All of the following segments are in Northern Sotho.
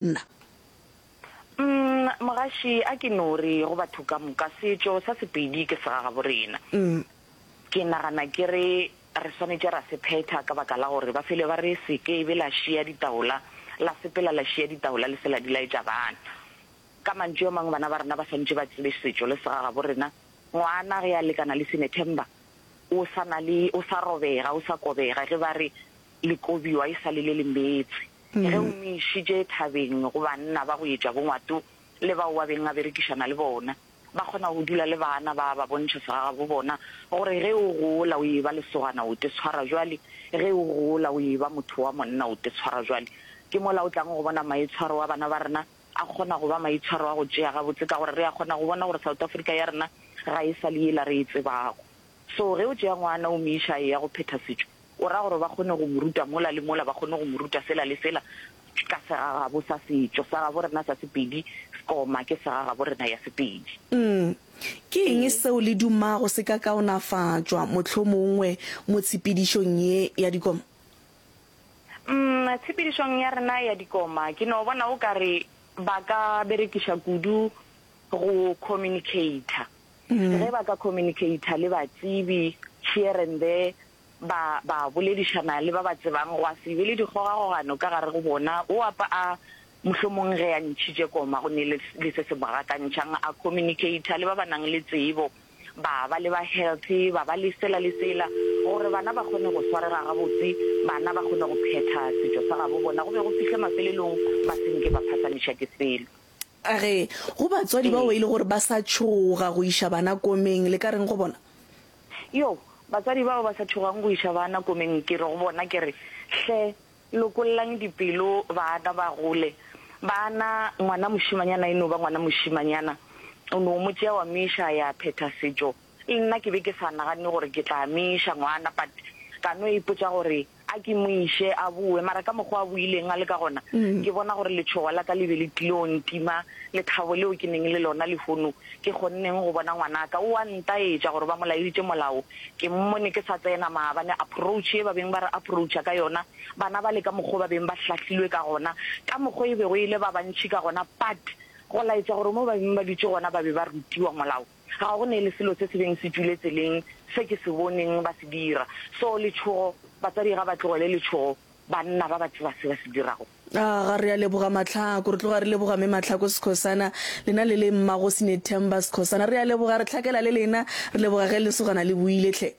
nna. Umm mogaši a ke no re go batho ka moka setšo sa Sepedi ke segagabo rena. Umm. Ke nagana ke re re swanetše ra se phetha ka baka la gore ba fele ba re se ke be la šiya ditaola la sepela la šiya ditaola le se la di laetša bana. Ka mantšu a mangwe bana ba rena ba swanetše ba tsebe setšo le segagabo rena. Ngwana ge a lekana le Sinethemba o sa na le o sa robega o sa kobega ge ba re le kobiwa e sa le le le metse. Ge o mo išitše thabeng go banna ba go etša bongwato le bao a beng a berekišana le bona, ba kgona go dula le baana ba ba bontšha segagabo bona gore ge o gola o eba lesogana o te tshwara bjale, ge o gola o eba motho wa monna o te tshwara bjale. Ke mola o tlago go bona maitshwaro a bana ba rena a kgona go ba maitshwaro a go tšea gabotse ka gore re a kgona go bona gore South Africa ya rena ga e sa le yela re e tsebago. So ge o tšea ngwana o mo iša a eya go phetha setšo, O ra gore ba kgone go mo ruta mola le mola, ba kgone go mo ruta sela le sela ka segagabo sa setšo sa gabo rena sa Sepedi, sekoma ke segagabo rena ya Sepedi. Umm, ke eng seo le dumago se ka kaonafatšwa mohlomongwe mo tshepedišong ye ya dikoma? Umm, tshepedišong ya rena ya dikoma ke no bona o ka re ba ka berekiša kudu go communicator. Ge ba ka communicator le batsebi here and there, ba ba boledišana le ba ba tsebang, gwa se be le dikgogakgogano ka gare go bona, o a pa a mohlomong ge a ntšhitše koma go ne le le se se mo gakantšhang, a communicator le ba ba nang le tsebo, ba ba le ba healthy, ba ba le sela le sela, gore bana ba kgone go swarega gabotse, bana ba kgone go phetha setšo sa gabo bona go be go fihle mafelelong ba se nke ba phasamišwa ke selo. A re go batswadi bao ba ile gore ba sa tšhoga go iša bana komeng, le ka reng go bona? Yo, batswadi bao ba sa tšhogang go iša bana komeng, ke re go bona ke re, Hle, lokollang dipelo baana ba gole. Baana, ngwana mošemanyana e no ba ngwana mošemanyana, o no mo tšea wa mo iša a ya phetha setšo. Nna ke be ke sa naganne gore ke tla mo iša ngwana but ka no ipotša gore a ke mo iše a boe mara ka mokgwa a boileng a le ka gona ke bona gore letšhogo la ka le be le tlile go ntima lethabo leo ke neng le lona lehono ke kgonneng go bona ngwanaka o a ntaetša gore ba mo laeditše molao ke mmone ke sa tsena maabane approach e ba beng ba re approacha ka yona bana ba le ka mokgwa ba beng ba hlahlilwe ka gona ka mokgwa e bego e le ba bantši ka gona but go laetša gore mo ba beng ba dutše gona ba be ba rutiwa molao Ga go ne le selo se se beng se dule tseleng se ke se boneng ba se dira. So letšhogo, batswadi ga ba tlogele letšhogo, banna ba ba tseba se ba se dirago. A ga re a leboga Matlhako? Re tloga re leboga Mme Matlhako Skhosana, lena le le Mmagosi Nethemba Skhosana. Re a leboga, re hlakela le lena. Re leboga ge lesogana le buile hle.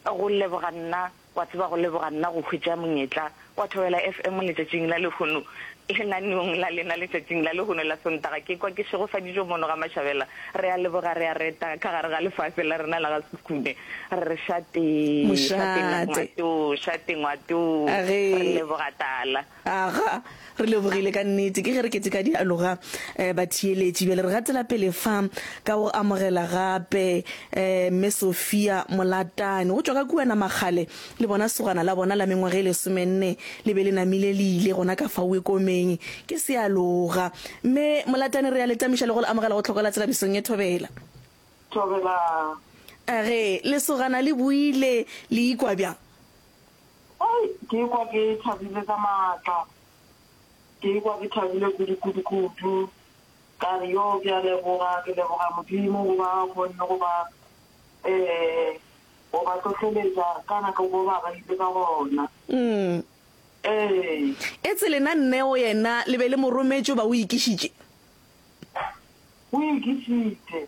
Go leboga nna, wa tseba go leboga nna go hwetša monyetla wa Thobela FM letšatšing la lehono, lenaneong la lena letšatšing la lehono la Sontaga. Ke kwa ke šegofaditšwe mono ga Mashabela. Re a leboga, re a reta ka gare ga lefase la rena la ga Sekhukhune. Re re šatee, šatee Mošate. ngwato, šate ngwato. A ge. Re leboga Tala. Aga, re lebogile ka nnete. Ke ge re keteka dialoga, eh, batheeletši. Bjale re gatela pele fa ka go amogela gape, eh, Mme Sophia Molatane, go tšwa ka kua Namakgale. Le bona segwana la bona la mengwaga e lesomenne le be le namile le ile gona ka fa Wekomeng. Ke sealoga. Mme Molatane, re a le tamiša le go le amogela go Tlhokola Tselabisong e Thobela. Thobela. Age, lesogana le buile, le ikwa bjang? Hei! Ke ikwa ke thabile ka maatla. Ke ikwa ke thabile kudu-kudu-kudu. Ka re, Yoo, ke a leboga, ke leboga Modimo goba a kgonne go ba, ee, go ba hlohleletša ka nako mo ba beile ka gona. Ee. Etse lena Neo yena le be le mo rometše goba o ikišitše? O ikišitše.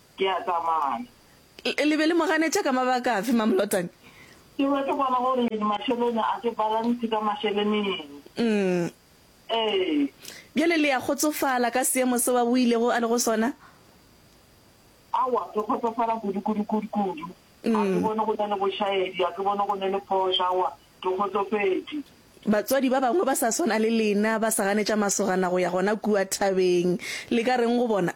Ke a tsamaya. Le be le mo ganetša ka mabaka afe, Mamlotane? Ke be ke bona gore mašelene a ke balance ka mašeleneng. Umm. Ee. Bjale le ya kgotsofala ka seemo seo a boilego a le go sona? Aowa, ke kgotsofala kudu, kudu, kudu, kudu. A ke bone go na le bošaedi, a ke bone go ne le phošo, aowa, ke kgotsofetše. Batswadi ba bangwe ba sa swana le lena ba sa ganetša masogana go ya gona kua thabeng. Le ka reng go bona?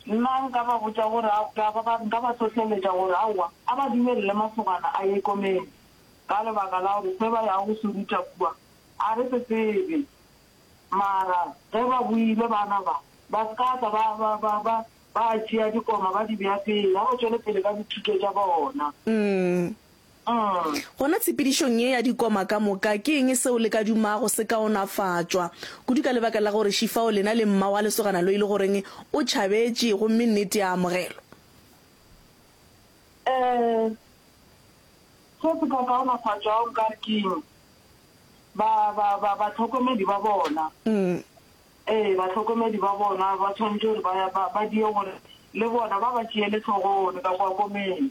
Nna nka ba botša gore a, ka ba ba, nka ba hlohleletša gore aowa, a ba dumelele masogana a ye komeng, ka lebaka la gore se ba yago go se ruta kua a re se tsebe. Mara ge ba boile, bana ba, ba se ka tla ba, ba, ba, ba, ba tšea dikoma ba di bea pele, a ba tšwele pele ka dithuto tša bona. Umm, Gona tshepedišong ye ya dikoma ka moka, ke eng seo le ka dumago se kaonafatšwa, kudu ka lebaka la gore Shifao lena le mma wa lesogana lo e le goreng o tšhabetše gomme nnete ya amogelwa? Ee, se se ka kaonafatšwago nka re ke ba, ba, ba, batlhokomedi ba bona. Ee, batlhokomedi ba bona ba tshwanetše gore ba, ba, ba die gore le bona ba ba tšeele hlogong ka kwa komeng.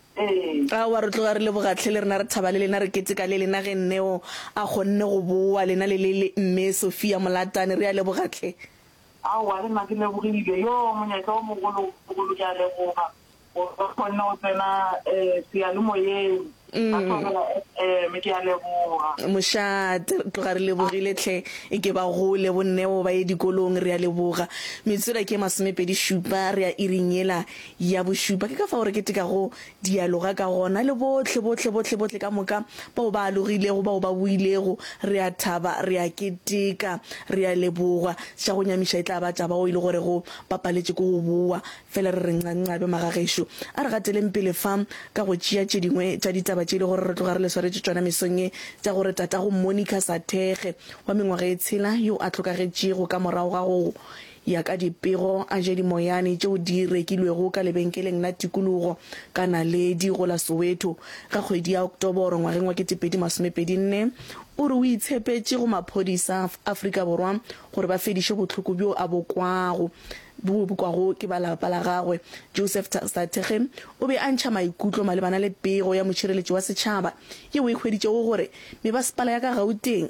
Aowa, re tloga re leboga tlhe le rena, re thaba le lena, re keteka le lena ge Neo a kgonne go bowa, lena le le le Mme Sophia Molatane. Re a leboga tlhe. Aowa, le nna ke lebogile. Yoo, monyetla o mogologolo, ke a leboga gore re kgonne go tsena seyalemoyeng ka Thobela FM. Ke a leboga. Mošate, re tloga re lebogile tlhe. E ke ba gole bo Neo, ba ye dikolong. Re a leboga. Metsura ke e masomepedi šupa, re ya iring yela Ya bošupa, ke ka fao re ketekago dialoga ka gona le bohle, bohle, bohle, bohle ka moka, bao ba alogilego, bao ba builego. Re a thaba, re a keteka, re a leboga. Sa go nyamiša e tla ba taba o e le gore go bapaletše ko go bowa. Fela re re nqanqabe, magagešo. A re gateleng pele fa ka go tšea tše dingwe tša ditaba tše e le gore re tloga re le swaretše tšona mesong ye, tša gore tatago Monica Sathekge, wa mengwaga e tshela, yo a hlokagetšego ka morago ga go Ya ka dipego a je dimoyane tšeo di rekilwego ka lebenkeleng la tikologo ka naledi go la Soweto ka kgwedi ya Oktoboro ngwageng wa 2024, o re o itshepetše go maphodisa a Afrika Borwa gore ba fediše bohloko bjo a bo kwago bo bokwago ke ba lapa la gagwe. Joseph Thateghe o be a ntšha maikutlo malebana le pego ya mošireletši wa setšhaba yeo e hweditšego gore mebasepala ya ka Gauteng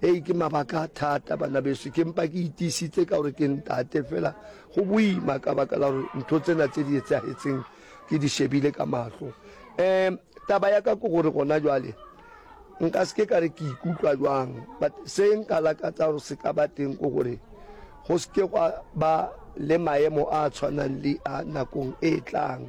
Hei, ke mabaka a thata, bana beso, ke mpa ke itiisitse ka gore ke ntate fela. Go boima ka baka la gore ntho tsena tse di etsagetseng ke di shebile ka mahlo. Um taba ya ka ke gore gona jwale nka se ke ka re ke ikutlwa jwang but se nka lakatsa gore se ka ba teng ko gore go se ke gwa ba le maemo a tshwanang le a nakong e tlang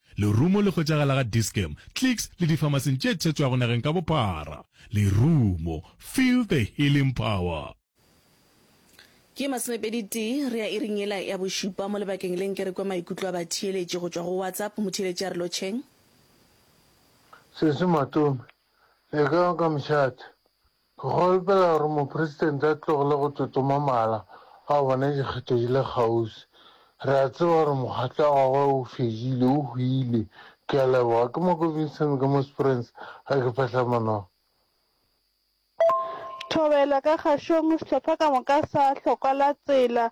Lerumo le hwetšagala ga Dis-Chem, Clicks le difamasing tše thetšwago nageng ka bophara. Lerumo, feel the healing power. Ke masomepedi-tee, re ya iring yela ya bošupa mo lebakeng le nke re kwe maikutlo a batheeletši go tšwa go WhatsApp. Motheeletši a re lotšheng. Sesi Matome, le kae ka moshathi? Ke kgolpela gore Mopresidente a tlogele go totoma mala a bona dikgetho di le kgaufsi. Re a tseba gore mokgatlo wa gagwe o fedile, o hwile. Ke a leboga. Ke Moko Vincent ka mo Springs, a ke phahla manoga. Thobela ka gašong sehlopha ka moka sa hlokwalatsela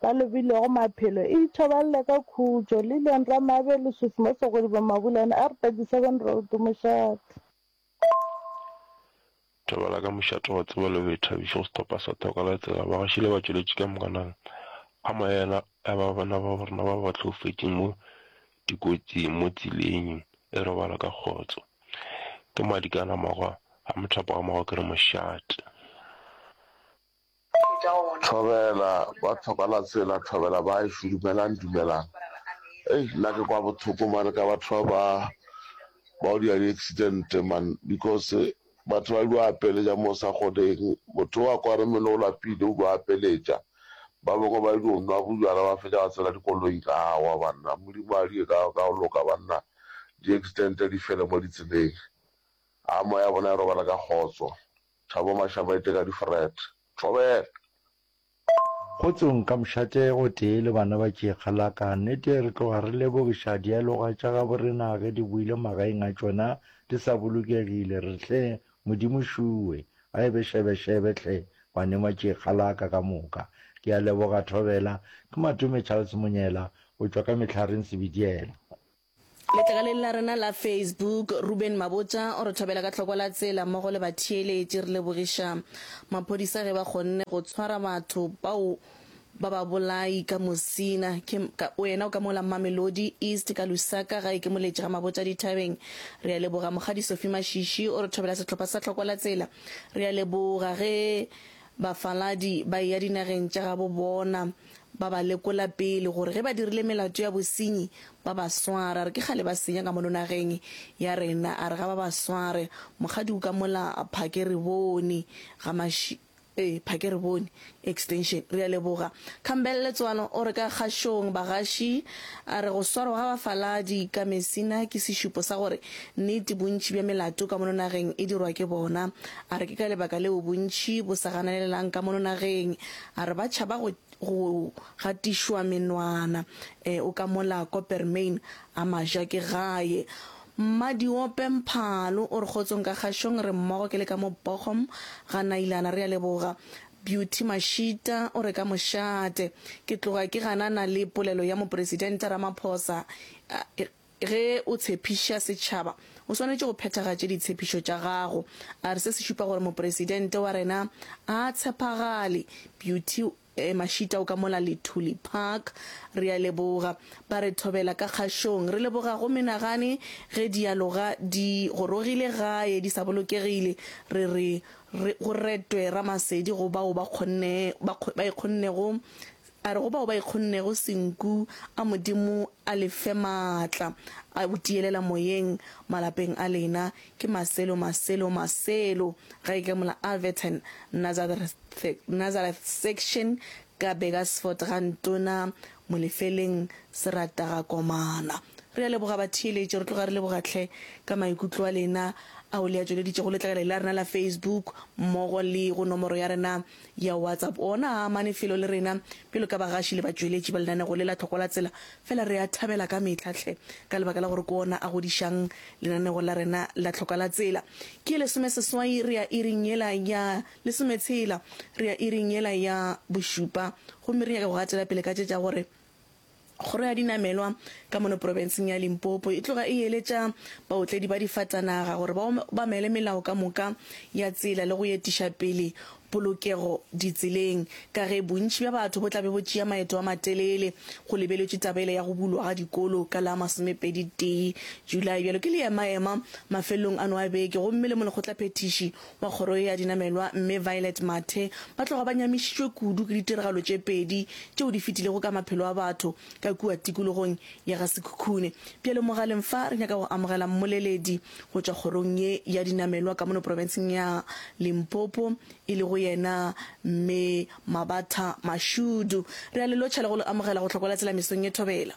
ba lobilego maphelo e ithobalela ka khutšo, Lillian Ramabe, Lesufi mo Segodibong Mabulane, R, 37 Road, Mošate. Thobela ka mošate wa tseba le boithabišo go sehlopha sa Toka la Tsela, bagešo le batšweletši ka moka nang a moya yena ya ba bana ba rena ba ba tlhoufetšeng mo dikotsing mo tseleng e robala ka kgotso ke Madikana magwa a mothapo wa magwa ke re mošate. Thobela ba tlhoka la tsela thobela ba e shu dumelang dumelang ei nna ke kwa bothoko mane ka batho ba ba ba o dira di accident man because batho ba dilo apeletša mo sa godeng motho wa kwa re mele o lapile o dilo apeletša ba bangwe ba dilo nwa bojala ba fetša ba tsela dikoloi ka wa banna modimo a di ka ka loka banna di accident di fele mo ditseleng a moya bona e robala ka kgotso. Thabo Mashabaite ka di-fret. Thobela! Kgotsong ka mošate o tee le bana ba tšekga la ka. Nnete re tloga re lebogiša dialoga tša gabo rena ge di boile magaeng a tšona di sa bolokegile. Re hle, Modimo šuwe, a ebe šebešebe hle, banema tšekga la ka ka moka. Ke a leboga Thobela. Ke Matome Charles Monyela, o tšwa ka Mehlareng Sebediela. Letlakaleng la rena la Facebook, Reuben Mabotja o re thobela ka tlhoko la tsela mmogo le batheeletši. Re lebogiša maphodisa ge ba kgonne go tshwara batho bao ba babolai ka Musina. Ke ka wena o ka mola Mamelodi East ka Lusaka gae ke moletši ga Mabotja dithabeng. Re a leboga Mokgadi Sophie Mashishi o re thobela sehlopha sa tlhoko la tsela. Re a leboga ge bafaladi ba eya dinageng tša gabo bona. Ba ba lekola pele gore ge ba dirile melato ya bosenyi ba ba sware. A re ke kgale ba senya ka mono nageng ya rena. A re ga ba ba sware. Mokgadi o ka mola Phakerebone ga maši, ee, Phakerebone Extension. Re a leboga. Campbell Letswalo o re ka kgašong bagaši. A re go swarwa ga bafaladi ka mesina ke sešupo sa gore nnete bontši bja melato ka mono nageng e dirwa ke bona. A re ke ka lebaka leo bontši bo sa ganalelelang ka mono nageng. A re ba tšhaba go go gatišwa menwana. E, o ka mola Coppermine a ma ja ke gae. Mmadiope Mphalo o re kgotsong ka kgašong re mmogo ke le ka mo Bochum ga Nailana re a leboga. Beauty Mashita o re ka mošate ke tloga ke ganana le polelo ya Mopresidente Ramaphosa. Ge o tshepiša setšhaba, o swanetše go phethagatše ditshepišo tša gago. A re se se šupa gore Mopresidente wa rena a a tshepagale. Beauty, Eh, Mashita o ka mola Lithuli Park. Re a leboga. Ba re thobela ka kgašong. Re leboga go menagane ge dialoga di gorogile gae di sa bolokegile. Re re go retwe Ramasedi go bao ba kgonne, ba e kgonnego. A re go bao ba ikgonnego senku a Modimo a le fe maatla a go tiyelela moyeng malapeng a lena. Ke maselo, maselo, maselo. Ga e ke mola Alverton, Nazareth, Nazareth Section ka Burgersfort ga Ntona Molefeleng Serata ga Komana. Re a leboga batheeletši, re tloga re leboga hle ka maikutlo a lena ao le a tšweleditšego letlakala la rena la Facebook mmogo le go nomoro ya rena ya WhatsApp. Ona a amane felo le rena bjalo ka bagaši le batšweletši ba lenanego le la Tlhoko la Tsela, fela re a thabela ka mehla hle ka lebaka la gore ke ona a godišang lenanego la rena la Tlhoka la Tsela. Ke lesomeseswai, re ya iring yela ya lesometshela, re ya iring yela ya bošupa, gomme re nyaka go gatela pele ka tše tša gore, Kgoro ya dinamelwa ka mono profenseng ya Limpopo e tloga e eletša baotledi ba difatanaga gore ba obamele melao ka moka ya tsela le go etiša pele polokego ditseleng ka ge bontši bja batho bo tlabe bo tšea maeto a matelele go lebeletšwe taba ele ya go bulwa ga dikolo ka la masomepedi tee Julae. Bjalo ke leemaema mafelelong ano a beke gomme le molekgotlaphethiši Ba kgoro ya dinamelwa Mme Violet Mathe ba tloga ba nyamišitšwe kudu ke ditiragalo tše pedi tšeo di fetilego ka maphelo a batho ka kua tikologong ya ga Sekhukhune. Bjale mogaleng fa re nyaka go amogela mmoleledi go tšwa kgorong ye ya dinamelwa ka mono profenseng ya Limpopo e lego yena Mme Mabatha Mashudu. Re a le lotšha le go le amogela go Hlokola Tsela mesong ye thobela.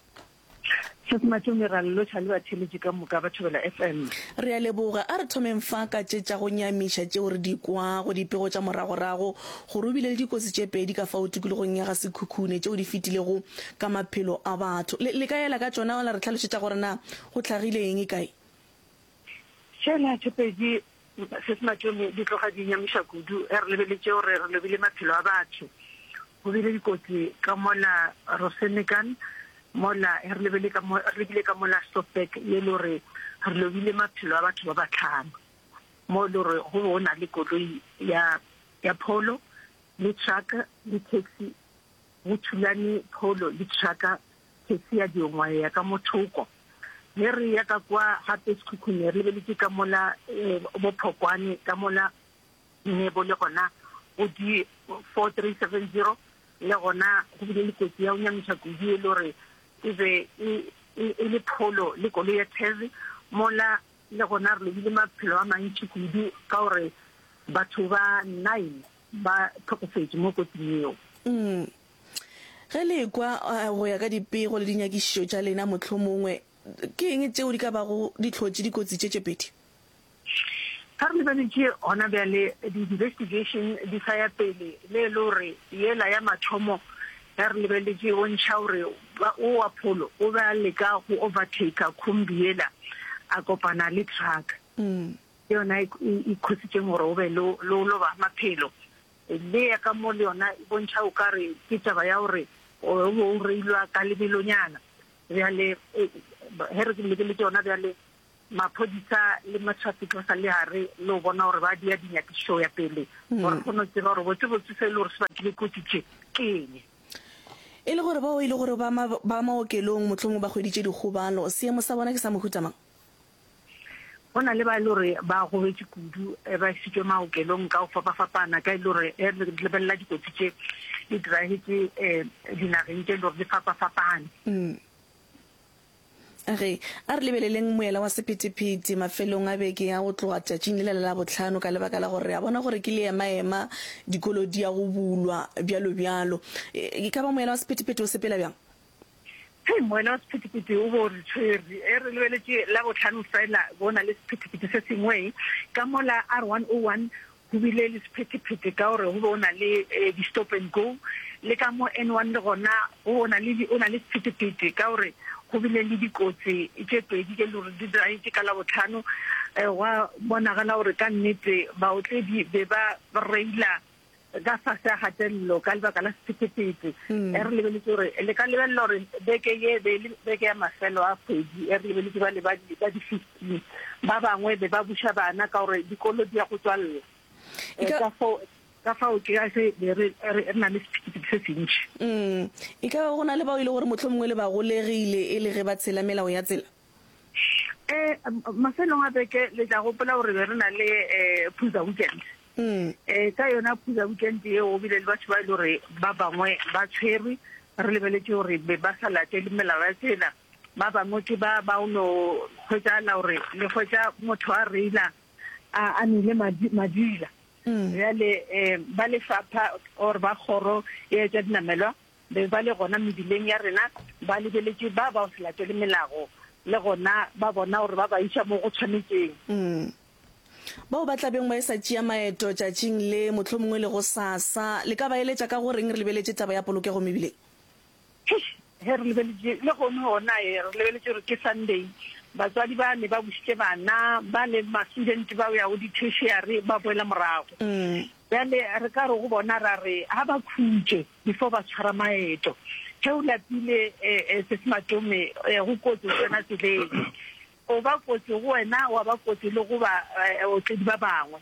Hle Smart o merallo tšha le batheeletši ka moka ba Thobela FM. Re a leboga. A re thomeng fa ka tše tša go nyamiša tšeo re di kwago, dipego tša moragorago, gore o bile le dikotsi tše pedi ka fao tikologong ya ga Sekhukhune tšeo di fetilego ka maphelo a batho. Le, le ka ela ka tšona, la re hlalošetša gore na go hlagile eng, e kae? Tšela tše pedi se se mathomo di tloga di nyamiša kudu ge re lebeletše gore re lobile maphelo a batho. Go bile dikotsi ka mola Rosenekan, mola ge re lebile ka mo, re lebile ka mola Sopek ye le gore re lobile maphelo a batho ba batlhano, mo e le gore go be go na le koloi ya, ya pholo le truck le taxi, go thulane pholo le truck Ke sia diongwa ya ka mothoko. Ge re ya ka kwa gape sekhukhung re lebeletše ka mola eh, bophokwane ka mola ne bo le gona go di 4370 le gona go bile le kotsi ya o nyamiša kudu e le gore e be e, e, e le pholo le kolo ya tese mola le gona re lobile maphelo a mantši kudu ka gore batho ba nine ba tlhokofetše mo kotsing eo mm. Ge le ekwa go ya ka dipego le dinyakišišo tša lena, mohlomongwe ke eng tšeo di ka bago di hlotše dikotsi tše tše pedi? Pharologano tše gona bjale di investigation di sa ya pele le e le gore yela ya mathomo ya re lebeletše e bontšha gore o wa pholo o be a leka go overtaker khumbi yela a kopana le truck ke yona e khositšeng gore o be le o loba maphelo. Le eya ka mo le yona e bontšha o ka re ke taba ya gore o be o reilwa ka lebelonyana. Bjale ge re leke le tšona bjale maphodisa le matšhwapi tlosa le a re le o bona gore ba dia dinyakišišo ya pele gore kgone o tseba gore botsebotse se e le gore se bakile kotsi tše ke eng. E le gore bao e le gore ba ba maokelong mohlomongwe ba hweditše dikgobalo, seemo sa bona ke sa mohuta mang? Go na le ba e le gore ba gobetše kudu eh, ba isitswe maokelong ka go fapafapana ka e le gore eh, re lebelela dikotsi tše di diragetse um dinageng tše e le gore di fapafapane mm. Re a re lebeleleng moela wa sephethephethe mafelong a beke ya go tloga tšatšing le lela la botlhano ka lebaka la gore re a bona gore ke leemaema dikolo di ya go bulwa bjalo bjalo e, e ka ba moela wa sephethephethe o sepela bjang Hei moena wa sephethephethe o bo re tshwere. E re lebeletše Labohlano fela bo na le sephethephethe se sengwe. Ka mola R101 go bile le sephethephethe ka gore go be o na le eh, di-stop and go. Le ka mo N1 le gona go bo na le di- o na le sephethephethe ka gore go bile le dikotsi tše pedi tše le gore di diragetše ka Labohlano. Eh, Gwa bonagala gore ka nnete baotledi be ba reila ka fase a gatelelo ka lebaka la sephethephethe e re lebeletse gore le ka lebelela gore beke ye be le beke ya mafelo a kgwedi e re lebeletse ba le ba di-fifteen ba bangwe be ba buša bana ka gore dikolo di ya go tswalela e ka foo ka fao ke ga se re na le sephethephethe se sentši mm. e ka go na le bao e le gore motlho mongwe le bagolegile e le ge ba tshela melao ya tsela um mafelong a beke le tla gopola gore be re na le um phuza weekend um ka yona phuza weekend eo bile le batho ba e le gore ba bangwe ba tshwerwe re lebeletse gore be ba sa latele melao ya tsela ba bangwe ke ba ba o no hwetšagala gore le hwetša motho a reila a nile madila bjale um ba lefapha or ba kgoro e etša dinamelwa be ba le gona mebileng ya rena, ba lebeletše ba bao se latele melago, le gona ba bona gore ba ba iša mo go tshwanetšeng. Mm. Bao ba tla beng ba e sa tšea maeto tšatšing le, mohlomongwe le gosasa, le ka ba eletša ka go reng re lebeletše taba ya polokego mebileng? Eish, ge re lebeletše, lehono gona e, re lebeletše gore ke Sunday, batswadi ba ne ba bušitše bana, bale ma-student ba ya go di-tertiary ba boela morago. Mm. Bjale re ka re go bona, ra re ga ba khutše. before ba tshwara maeto ge o lapile um sesimatome um go kotsi go tsena tseleng o ba kotsi go wena wa ba kotsi le go ba otledi ba bangwe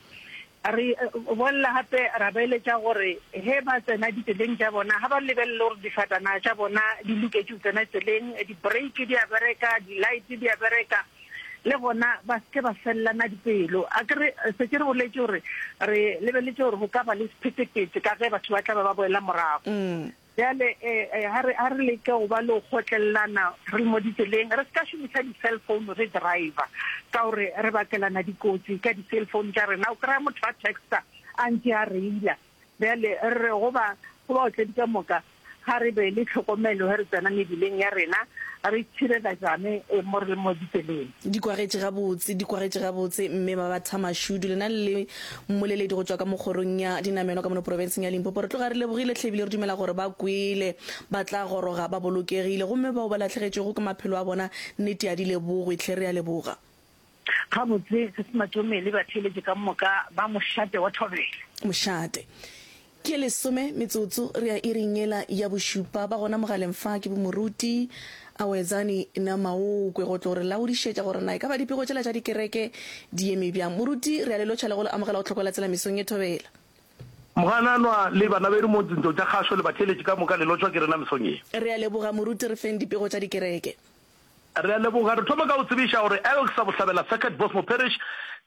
re bolela gape ra beeletša gore ge ba tsena ditseleng tša bona ga ba lebelele gore difatana tša bona di loketše go tsena tseleng di-break di a bereka di-light di a bereka le gona ba se ke ba felelana dipelo a ke re se ke re boletše gore re lebeletše gore go ka ba le sephetephete ka ge batho ba tla ba ba boela morago mm. bjale ga eh, eh, re leke go ba le go kgotlelelana re le mo ditseleng re se ka šomiša di-cell phone re driver ka gore re bakelana dikotsi ka di-cell phone tša rena o kry-a motho a texta a ntse a reila Bjale, re re go ba, go baotledi ka moka, ga re be le tlhokomelo ge re tsena mebileng ya rena, re tšhirela jame e mo re le mo ditseleng. Di kwagetše gabotse, di kwagetše gabotse, mme ba ba thamašudu. Lena le le mmoleledi go tšwa ka mo kgorong ya dinamelwa ka mono profenseng ya Limpopo. Re tloga re lebogile hle ebile re dumela gore ba kwele, ba tla goroga ba bolokegile. Gomme bao ba lahlegetšwego ke maphelo a bona, nnete ya di lebogwe hle. Re a leboga. Gabotse, se se matšomele batheeletše ka moka ba mošate wa thobela. Mošate. Ke lesome metsotso re ya iring yela ya bošupa. Ba gona mogaleng fa ke bo Moruti, Awetsani na Maokwe go tlo re laodišetša gore na e ka ba dipego tšela tša dikereke di eme bjang. Moruti, re ya le lotšha le go le amogela go Tlhokoela Tsela mesong ye thobela. Mogananwa le banabedu mo dintlong tša kgašo le batheeletše ka moka le lotšwa ke rena mesong ye. Re ya leboga Moruti re feng dipego tša dikereke. Re a leboga. Re thoma ka go tsebiša gore Elk sa Bohlabela Circuit Bosmo Parish,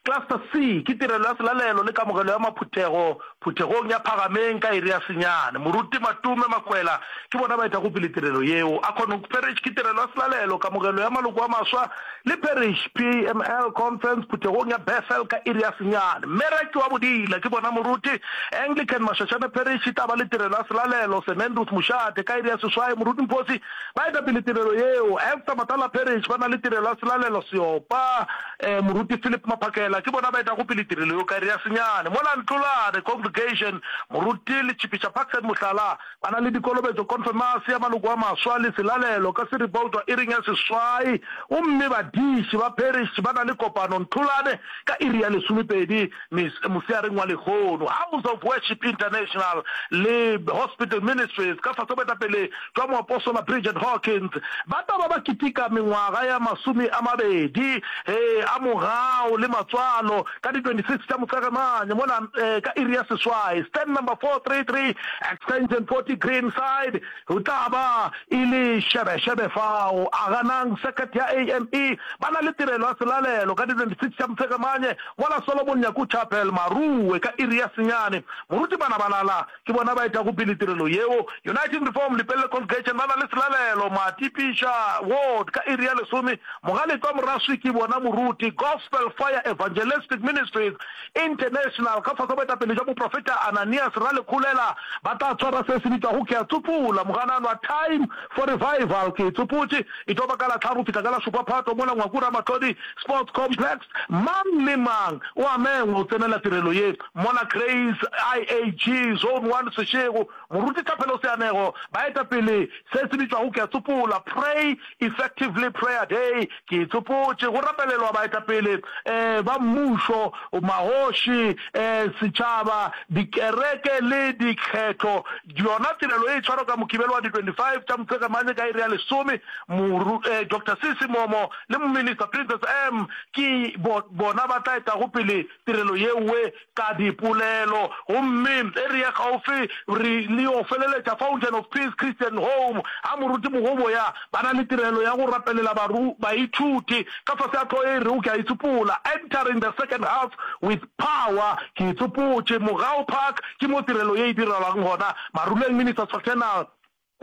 Cluster C, ke tirelo ya selalelo le kamogelo ya maphuthego phuthegong ya Phagameng ka iri ya senyane. Moruti Matume Makwela ke bona ba etago pele tirelo yeo. Akhonhoek Parish ke tirelo ya selalelo, kamogelo ya maloko a maswa le Parish PML Conference phuthegong ya Bethel ka iri ya senyane. Mme Rakiwa Bodila ke bona moruti. Anglican Mashashane Parish e tla ba le tirelo ya selalelo, St Andrews Mošate ka iri ya seswai. Moruti Mphosi. Ba eta pele tirelo yeo, Esther Matala-Parrish, ba na le tirelo ya Selalelo Seopa, eh, Moruti Philip Maphakela, ke bona ba etago pele tirelo yeo ka iri ya senyane. Mola Ntlolane Congregation, Moruti Letšhipiša Paxton Mohlala, ba na le dikolobetšo, Konfemase ya Maloko a Maswa le Selalelo ka Siri ba otšwa iring ya seswai, gomme badiši ba Parrish ba na le kopano Ntlolane ka iri ya lesomepedi moseareng wa lehono. House of Worship International le Hospital Ministries ka fase ga boetapele tšwa moapostola Bridget Hawkins, ba taba ba kitika mengwaga ya masome a mabedi e a mogau le matswalo ka di 26 tša Motshegemane mola ka iri ya seswai, stand number 433, extension 40 Greenside, go tla ba e le šebešebe fao. A ganang circuit ya AME ba na le tirelo ya selalelo ka di 26 tša Motshegemane mola Solomon Nyaku Chapel, Maruwe, ka iri ya senyane. Moruti Banabalala. Ke bona ba etago pele tirelo yeo. Uniting Reform Lepelle Congregation ba na le selalelo, Matipiša, Ward, ka iri ya lesome. Mogalekwa Moraswi ke bona moruti, Gospel Fire Evangelistic Ministries International, ka fase boetapele bja moprofeta Ananias Ralekhulela, ba tla swara se se bitšwago Ke a Tsopula, Mogananwa, Time for Revival. Ke tsopotše, e tlo ba ka la tlhano go fihla ka la šupa Phatho mola Ngwaku Ramatlodi Sports Complex. Mang le mang o a mengwa go tsenela tirelo ye. Mola Cranes, IAG, Zone One, Seshego, Moruti Thapelo Seanego, Baetapele, Se se bitšwago Ke a Tsopola, Pray Effectively Prayer Day, Ke Itsopotše, go rapelelwa baetapele um ba mmušo, magoši, um setšhaba, dikereke le dikgetho. Yona tirelo e tshwarwa ka Mokibelo wa di 25 tša Motshegemane ka iri ya lesome. Moru, um Doctor Sisi Momo le Mominista Princess Am ke bo, bona ba tla etago pele. tirelo yeoe ka dipolelo. Gomme e re ye kgaufsi re lio feleletša Fountain of Peace Christian Home, ga Moruti Mogoboya ba na le tirelo ya go rapelela baru baithuti ka fase ga tlo e rego Ke a Itsopola, Entering the Second Half with Power. Ke itsopotše, Mogau Park ke mo tirelo ye e direlwang gona, Maruleng Ministers Fraternal.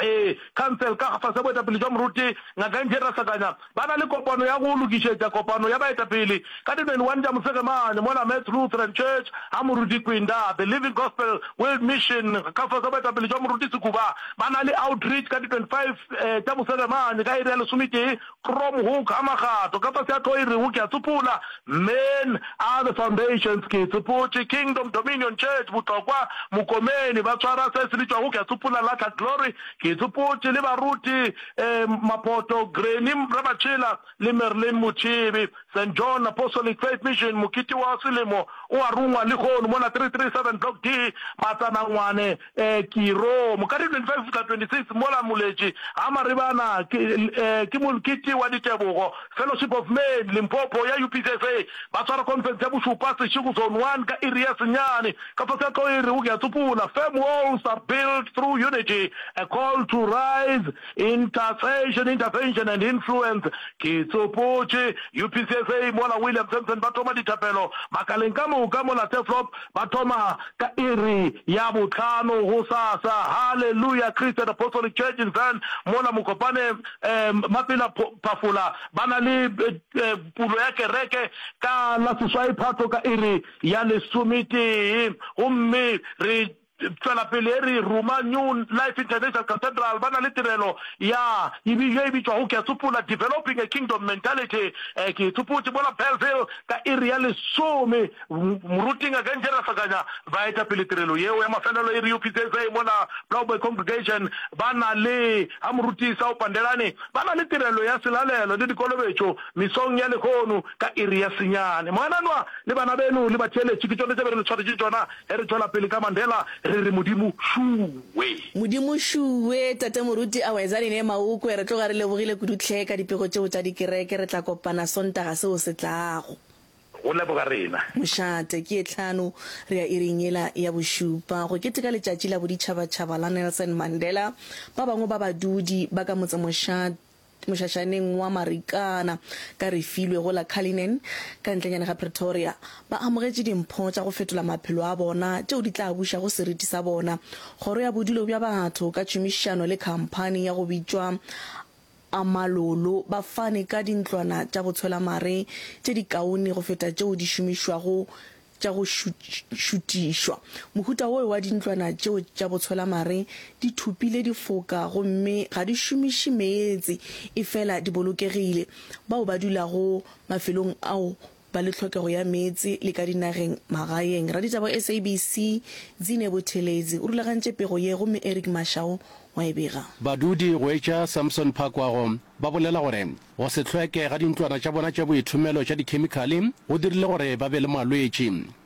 Ee, khansele ka fase ga boetapele jwa Moruti Ngaka Angie Rasakanya ba na le kopano ya go lokišetša kopano ya baetapele ka di 21 tša mosege mane mo la Metz Lutheran Church ga Moruti Kwinda. The Living Gospel World Mission ka fase ga boetapele jwa Moruti Sekuba ba na le outreach ka di 25 tša mosege mane ka iri ya lesometee From Hoek a Magato, ka fase a tlo e rego, Ke a tsopola, Men are the foundations, ke e tsopotše, Kingdom, Dominion, Church, Botlokwa, Mokomeni, ba tshwara se se bitšwago, ke a tsopola, Latlha, Glory, ke e tsopotše, le baruti, um, Mapoto, Granny, Ramatšhela, le Merlin Motšhebe, Saint John, Apostolic Faith Mission, Mokete wa Selemo o a rungwa lehono mona 337 Block D, Matsanangwane, Ee, ke ro. Moka di 25 go fihla 26 mola Moletši ga Maribana ke, ee, ke Molkete wa Ditebogo, Fellowship of Men, Limpopo, ya UPCSA, ba swara khonfense ya bošupa, Seshego Zone One, ka iri ya senyane. Ka fase ga tlo e rego ke a tsopola, Firm walls are built through unity, a call to rise, intercession, intervention and influence. Ke tsopotše, UPCSA, mola William Sampson ba thoma dithapelo makaleng ka moka mola Turfloop, Ba thoma ka iri ya bohlano gosasa. Hallelujah! Christian Apostolic Church in Zan, mola Mokopane Mapela Phafola ba na le pulo ya kereke ka la seswai Phatlo ka iri ya lesometee. Gomme re tšwela pele e re ruma New Life International Cathedral ba na le tirelo ya ye e bitšwago, ke a tsopola, Developing a Kingdom Mentality. Ke e tsopotše, mola Bellville ka iri ya lesome. Moruti Ngaka Nje Rasakanya ba eta pele tirelo yeo ya mafelelo e Rio Pitsetsei mola Blaauwberg Congregation. Ba na le ga Moruti Isao Pandelani ba na le tirelo ya selalelo le dikolobetšo misong ya lehono ka iri ya senyane. Mogananwa le bana beno le batheeletši ke tšone tše be re le tshwaretše tšona ge re tšwela pele ka Mandela re re Modimo šuwe. Modimo šuwe, Tate Moruti Awezanine Maukwe, re tloga re lebogile kudu hle ka dipego tšeo tša dikereke, re tla kopana Sontaga seo se tlago. Go leboga rena. Mošate, ke ye tlhano re ya iring yela ya bošupa go keteka letšatši la boditšhabatšhaba la Nelson Mandela. Ba bangwe ba badudi ba ka motse Mošate, mošašaneng wa Marikana ka Refilwe go la Cullinan ka ntlenyane ga Pretoria, ba amogetše dimpho tša go fetola maphelo a bona tšeo di tla bušago seriti sa bona. Kgoro ya Bodulo bja Batho ka tšhomišano le khamphani ya go bitšwa A Malolo ba fane ka dintlwana tša go tshwela mare tše dikaone go feta tšeo di šomišwago tša go šutišwa. Mohuta wo wa dintlwana tšeo tša botshwela mare di thopile difoka gomme ga di šomiše meetse efela di bolokegile. Bao ba dulago mafelong ao ba le tlhokego ya meetse le ka dinageng magaeng. Raditaba wa SABC, Dzine Buthelezi, o rulagantše pego ye gomme Eric Mashau wa e bega. Badudi go etša Samson Phakwago ba bolela gore go se hlweke ga dintlwana tša bona tša boithomelo tša dikhemikhale go dirile gore ba be le malwetši.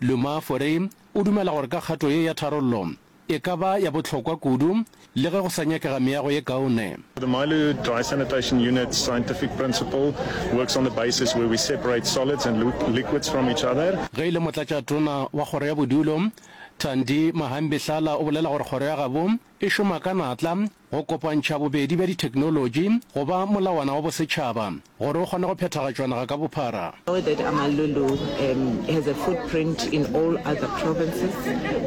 Luma Fore o dumela gore ka kgato ye ya tharollo e ka ba ya bohlokwa kudu le ge go sa nyakega meago ye kaone. The Mailu Dry Sanitation Unit's scientific principle works on the basis where we separate solids and liquids from each other. Ge e le Motlatšatona wa Kgoro ya Bodulo, Thandi Mahambi-Hlala o bolela gore Kgoro ya gabo e šoma ka natla, Go kopantšha bobedi bja ditheknolotši go ba molawana wa bosetšhaba gore o kgone go phethagatšwa naga ka bophara. Know that Amalulu um, has a footprint in all other provinces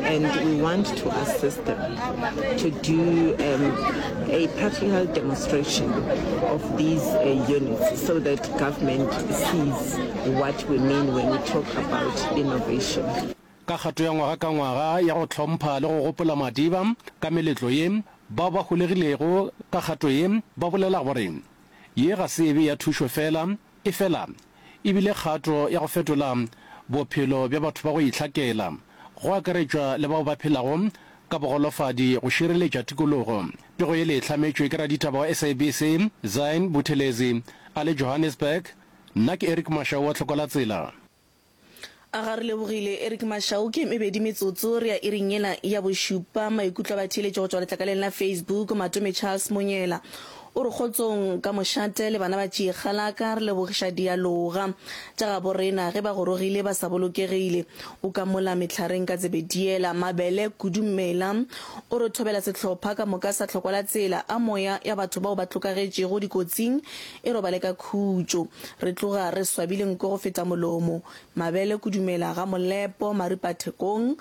and we want to assist them to do um, a practical demonstration of these uh, units so that government sees what we mean when we talk about innovation. Ka kgato ya ngwaga ka ngwaga ya go hlompha le go gopola Madiba ka meletlo ye, bao ba holegilego ka kgato ye ba bolela gore ye ga se ebe ya thušo fela, efela e bile kgato ya go fetola bophelo bja batho ba go itlhakela, go akaretšwa le bao ba phelago ka bogolofadi go šireletša tikologo. Pego yele e hlametšwe ke raditaba wa SABC, Zain Buthelezi a le Johannesburg. Nna ke Eric Mashau wa Tlhokwalatsela. A ga re lebogile Eric Mashau ke mebedi metsotso re ya iring yela ya bošupa maikutlo a batheeletši go tšwa letlakaleng la Facebook Matome Charles Monyela o re kgotsong ka mošate le bana ba tšiegalaka re lebogiša dialoga tša gabo rena ge ba gorogile ba sa bolokegile o ka mola mehlareng ka tsebediela mabele kudu mmela o re thobela sehlopha ka moka sa tlhokwala tsela a moya ya batho bao ba tlokagetšego dikotsing E robale ka khutšo. Re tloga re swabile nko go feta molomo. Mabele kudumela ga Molepo, maripa thekong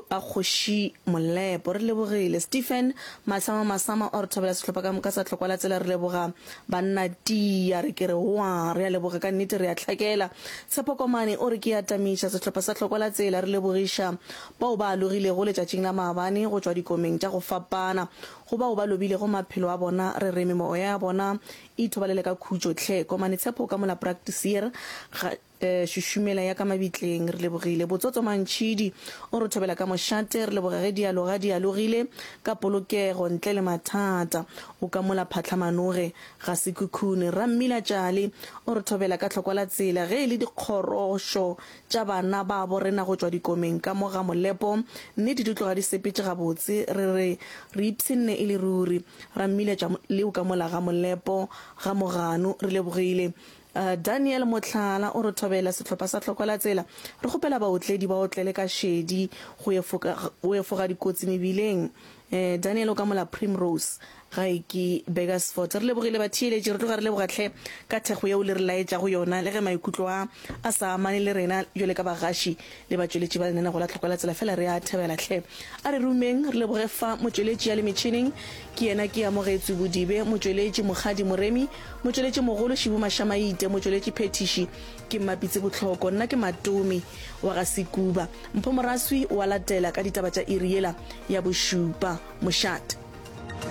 a kgoši Molepo. Re lebogile. Stephen, Masama, Masama o re thobela sehlopha ka moka sa tlhokwa la tsela re leboga banna Tiya re ke re wa re a leboga ka nnete re a tlhakela. Tshepo Komane o re ke a tamiša sehlopha sa tlhokwa la tsela re lebogiša bao ba alogilego letšatšing la maabane go tšwa dikomeng tša go fapana Go bao ba lobilego maphelo a bona, re re memoya ya bona e ithobalele ka khutšo. Tlhe, Komane Tshepo ka mola Praktisier, ga, e, šušumela ya ka mabitleng. Re lebogile. Botsotso Mantšhidi o re thobela ka mošate. Re leboga ge dialoga di alogile ka polokego, ntle le mathata. O ka mola Phatlhamanoge ga Sekhukhune. Rra Mmila Tšali o re thobela ka tlhokwa la tsela ge e le dikgorošo tša bana babo rena go tšwa dikomeng ka mo ga molepo, mme di di tloga di sepetše gabotse, re re, Re ipshinne e le ruri, ra mmiletša leo ka mola ga molepo, ga moganu, re lebogile. Daniel, mohlala, o re thobela sehlopha sa tlhokwelatsela, re kgopela baotledi ba otlele ka šedi go efoga dikotsi mebileng. Daniel o ka mola Primrose, Gaiki, Burgersfort. Re lebogile batheeletši, re tloga re leboga hle ka thekgo yeo le re laetšago yona, le ge maikutlo a a sa amane le rena bjale ka bagaši le batšweletši ba lenaneo la Tlhoka la Tsela, fela re a thabela hle. A re rumeng re leboge fa motšweletši ya le metšhineng ke yena ke Amogetswe Bodibe, motšweletši Mokgadi Moremi, motšweletši mogolo Šibu Mashamaite, motšweletši phethiši ke Mmapitse Botlhoko, nna ke Matomi wa ga Sekuba. Mpho Moraswi o a latela ka ditaba tša iri yela ya bošupa. Mošate.